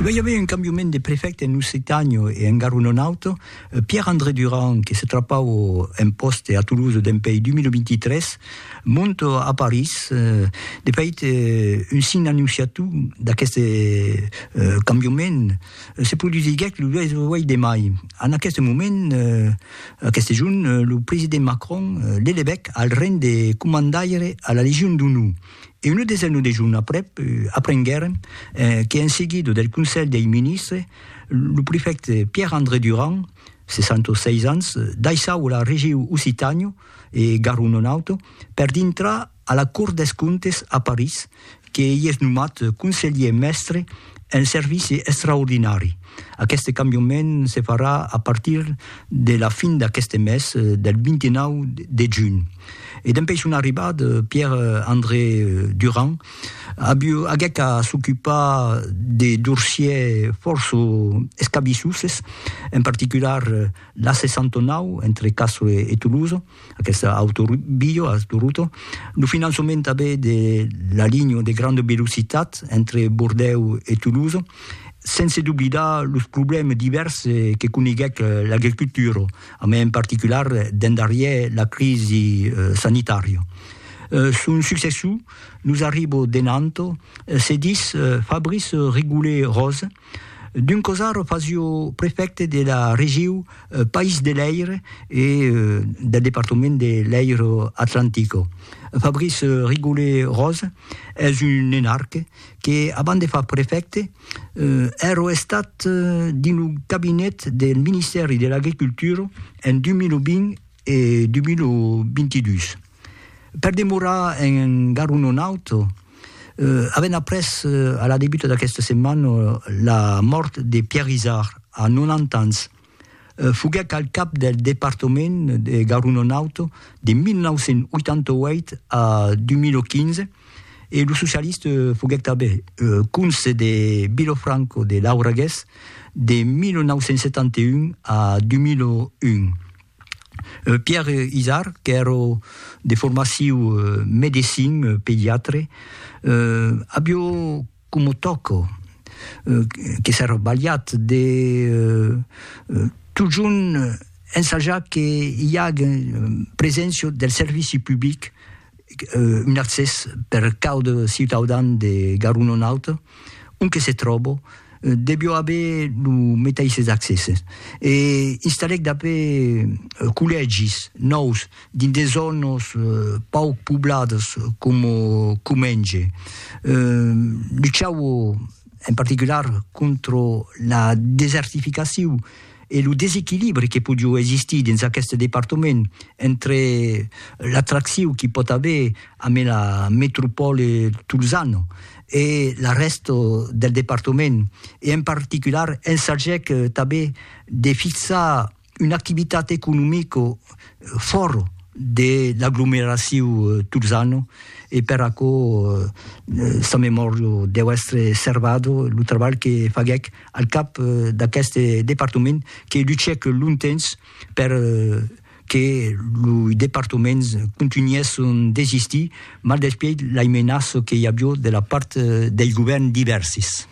E ben, i avèi un cambiament de prefècte en Occitània e en garon un aute, Pierre-André Durand, que se trapau un pòste a Toulouse dempèi 2023, monte a París. De fait, un sign annonciatiu d'aqueste cambiament se produsiguèc lo 18 de mai. En aqueste moment, aqueste jorn, lo president Macron l'elevèc al ranh de comandaire a la Legion d'Onor. e una desena de jorns aprèp aprenguèrem que en seguida del Conselh dei Ministres lo prefècte Pierre André Durand, 66 ans, daissava la regiu Occitània e Garonne-Nord-Auto per dintrar a la Cort des Comptes a París, que ei es nomat conselhier mèstre un servici extraordinari. Aqueste cambiament se farà a partir de la fin d'aqueste mes, del 29 de junh. E dempèi son arribat Pierre André Durand, aguec a s'ocupar de dorsiers fòrça escabissoses, en particular l'A69 entre Castres e Toulouse, Aquest autor Biyo a durut lo finançament tanben de la linha de granda velocitat entre Bordèu e Toulouse, sense doblidar los problèmes divèrs que coneguèc l'agricultura, a mai en particular dens darrièr la crisi sanitària. Son successor nos arriba de Nantes, se ditz Fabrice Rigoulet-Rose, D'un cosar fasio prefècte de la regiu País de l'Èir e del departament de l'Èiro Atlantico. Fabrice Rigollet-Rose es un nenarque que, abans de far prefècte, èrò estat dins lo cabinet del Ministèri de l'Agricultura en 2020 e 2022. Per demorar en Garu Nonaut, avèm après a la debuta d'aquesta setmana la mòrt de Pierre Izard, a 90 ans. Foguèc al cap del departament de Garu Nonaut de 1988 a 2015 e lo socialista foguèc tanben conse de Vilafranca de Lauragués de 1971 a 2001. Pierre Izard, qu'èro de formaciu medecin, pediatre, avió coma tòco, que s'èra balhat de totjorn ensajar que i agen preséncia del servici public un accès per caude ciutaudan de Garonon-Aute, on que se tròbo, devió aver lo meteisses accèsses. E installèc dapé collègis nòus dins de zònos pauc poblades coma Comenge. Luchau en particular contra la desertificaciu. e lo desequilibri que podiu existir dins aqueste departament entre l'atracciu qu'i pòt aver amé la metropòle tolzana e la rèsta del departament e en particular ensagèc tanben de fixar una activitat economica fòra de l'aglomeraciu tolzana e per aquò sa memòria deu èstre servada lo trabalh que faguèc Al cap d'aqueste departament que luchèc longtemps per que lo departament contunhèsse son desistir, maldespièit laimenaça que i avió de la part dei govèrn divèrsis.